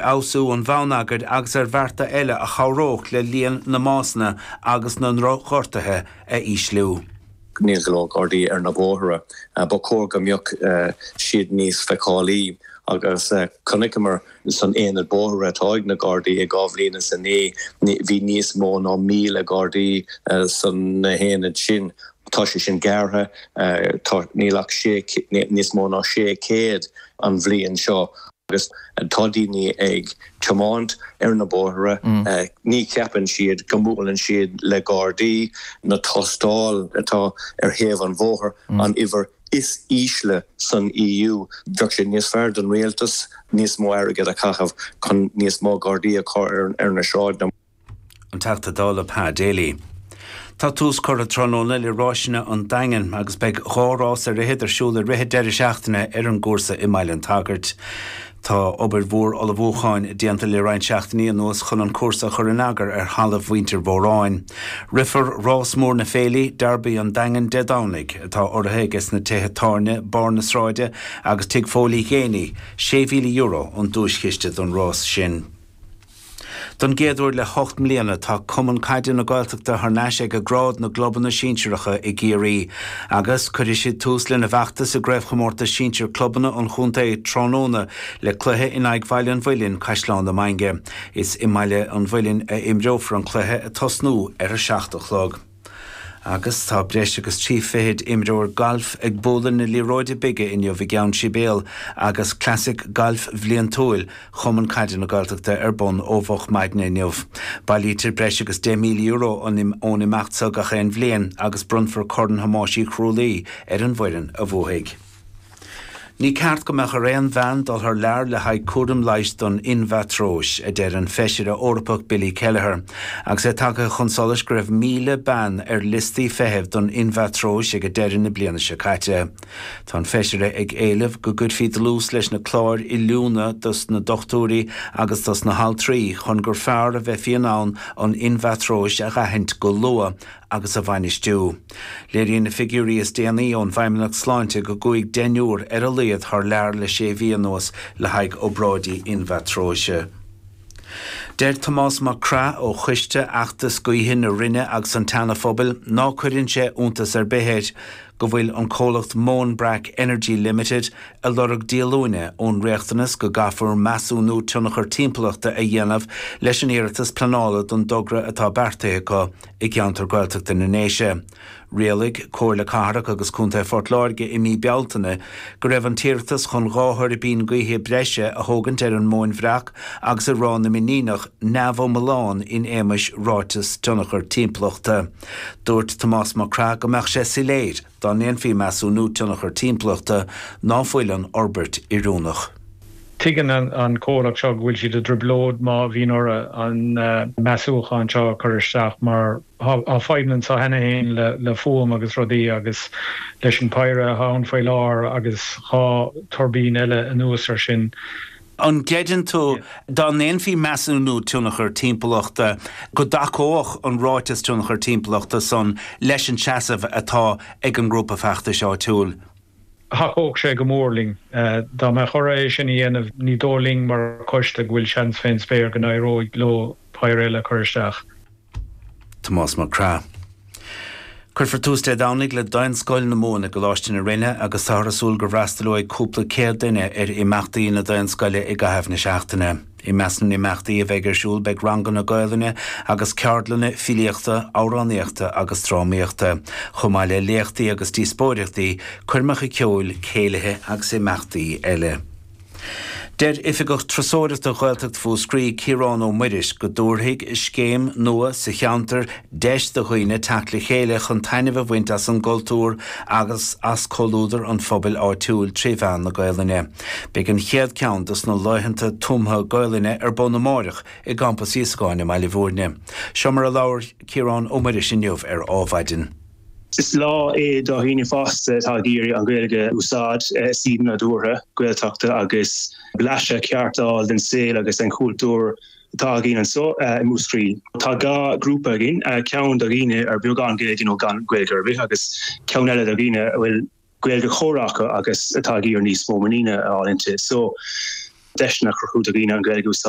fheabhsú an bhonneagair agus ar bhearta eile a chabhródh le líon na mbásanna agus na ndrochghortuithe a ísliú. Níl go leor Gardaí ar na bóithre. Ba chóir go mbeadh siad níos feiceálaí agus chonaiceamar san aonad bóithre atá ag na Gardaí i dhá bhliain is a naoi, bhí níos mó ná míle Gardaí san aonad sin. Tá sé sin gearrtha, níl ach níos mó ná sé chéad an bhliain seo. Agus tá daoine ag tiomáint ar na bóithre, ní cheapann siad go mbuaileann siad le Gardaí. Na tástáil atá ar thaobh an bhóthair, an uimhir is ísle san EU. Bheadh sé níos fearr don rialtas níos mó airgid a chaitheamh chun níos mó Gardaí a chur ar na sráideanna. An Teachta Dála Pa Daly. Tá tús curtha tráthnóna le Ráiseanna an Daingin agus beidh dhá rás ar fhichead ar siúl i rith an deireadh seachtaine ar an gcúrsa i mBaile an tSagairt. Tá obair mhór ullmhúcháin déanta le roinnt seachtainí anuas chun an cúrsa a chur in eagar ar thalamh mhuintir Mhóráin. Rithfear rás mór na Féile, Derby an Daingin, Dé Domhnaigh, atá urraithe aige sna tithe tábhairne Barr na Sráide agus Tigh Phóil Uí Ghéiní. €6,000 an duaischiste don rás sin. Don gcéad uair le hocht mbliana, tá Cumann Caide na Gaeltachta thar n-ais ag ag grád na gclubanna sinsearacha i gCiarraí, agus cuirfidh siad tús lena bhfeachtas sa gCraobhchomórtas Sinsear Clubanna an Chontae tráthnóna le cluiche in aghaidh Bhaile an Mhuilinn, Caisleán na Mainge. Is i mBaile an Mhuilinn a imreofar an cluiche, ag tosnú ar a seacht a chlog. Agus tá breis agus trí fichid imreoir gailf ag bualadh na liathróide bige inniu i gCeann Sibéal agus Classic Gailf Bhliantúil Chumann Caide na Gaeltachta ar bun ó mhoch maidne inniu. Bailítear breis agus €10,000 ón imeacht seo gach aon bhliain agus bronnfar Corn Thomáis Uí Chrualaoi ar an bhfoireann a bhuafaidh. Ní ceart go mbeadh ar aon bhean dul thar lear le haghaidh cúraim leighis don inmheatróis, a deir an Feisire Eorpach Billy Kelleher, agus é tagtha chun solais go raibh 1,000 bean ar liostaí feithimh don inmheatróis ag deireadh na bliana seo caite. Tá an Feisire ag éileamh go gcuirfí dlús leis na cláir oiliúna dos na dochtúirí agus dos na haltraí chun gur fearr a bheifí in ann an inmheatróis a aithint go luath agus a bhainistiú. Léiríonn na figiúirí is déanaí ón bhFeidhmeannacht Sláinte go gcuaigh deichniúr ar a laghad thar lear le sé mhí anuas le haghaidh obráidí inmheatróise. Deir Tomás Mac Craith ó choiste fheachtais gaoithe na Rinne agus an tSeana Phobail ná cuireann sé iontas ar bith air go bhfuil an comhlacht Moanbrack Energy Limited ag lorg díolúine ón riachtanas go gcaithfear measúnú tionchar timpeallachta a dhéanamh leis an iarratas pleanála don dtogra atá beartaithe acu i gceantar Gaeltachta na nDéise. Rialaigh Comhairle Cathrach agus Contae Phort Láirge i mí Bealtaine go raibh an t-iarratas chun dhá thuirbín gaoithe breise a thógaint ar an Móin Bhreac agus i Ráth na mBiníneach neamhiomlán in éamais Ráiteas Tionchar Timpeallachta. Dúirt Tomás Mac Craith go mbeadh sé soiléir. Dá ndéanfaí measúnú tionchar timpeallachta, ná fuil an fhorbairt oiriúnach. Tuigeann an comhlacht seo go bhfuil siad i dtrioblóid má bhíonn orthu an measúchán seo a chur isteach mar tá fadhbanna anseo cheana féin le fuaim agus rudaí agus leis an bpéire atá ann faoi láthair agus dhá tuirbín eile anuas ar sin. An gcreideann tú, dá ndéanfaí measúnú tionchair timpeallachta, go dtacódh an ráiteas tionchair timpeallachta san leis an seasamh atá ag an ngrúpa feachtais áitiúil? Thacódh sé go mór linn. Dá mbeadh orthu é sin a dhéanamh, ní dóigh linn mar choiste go bhfuil seans fén spéir go n-éireoidh leo péire eile a chur isteach. Tomás Mac Craith. Cuirfear tús Dé Domhnaigh le Daonscoil na Mumhan i gColáiste na Rinne agus táthar ag súil go bhfreastalóidh cúpla céad duine ar imeachtaí na Daonscoile i gcaitheamh na seachtaine. I measc na n-imeachtaí a bheidh ar siúl beidh ranganna Gaolainne agus ceardlanna filíochta, amhránaíochta agus drámaíochta, chomh maith le léachtaí agus díospóireachtaí, coirmeacha ceoil, céilithe agus imeachtaí eile. Deir Oifigeach Turasóireachta Ghaeltacht Mhúscraí, Ciarán Ó Muiris, go dtabharfaidh scéim nua sa cheantar deis do dhaoine teacht le chéile chun taitneamh a bhaint as an gcultúr agus as comhluadar an phobail áitiúil trí mheán na Gaelainne. Beidh an chéad cheann dos na laethanta tumtha Gaelainne ar bun amáireach i gCampas Íosagáin i mBaile Mhúirne. Seo mar a labhair Ciarán Ó Muiris inniu ar Ádhmhaidin. Is lá é do dhaoine fásta atá ag iarraidh an Ghaeilge a úsáid i suíomh nadúrtha Gaeltachta agus blaiseadh ceart d'fháil den saol agus den chúltúr atá againn anso i Múscraí. Tá dhá ghrúpa againn, ceann do dhaoine ar bheagán Gaeilge nó gan Gaeilge ar bith agus ceann eile do dhaoine a bhfuil Gaeilge chomhrá acu agus atá ag iarraidh níos mó muiníne a fháil inti so deiseanna a chruthú do dhaoine an Ghaeilge a úsáid.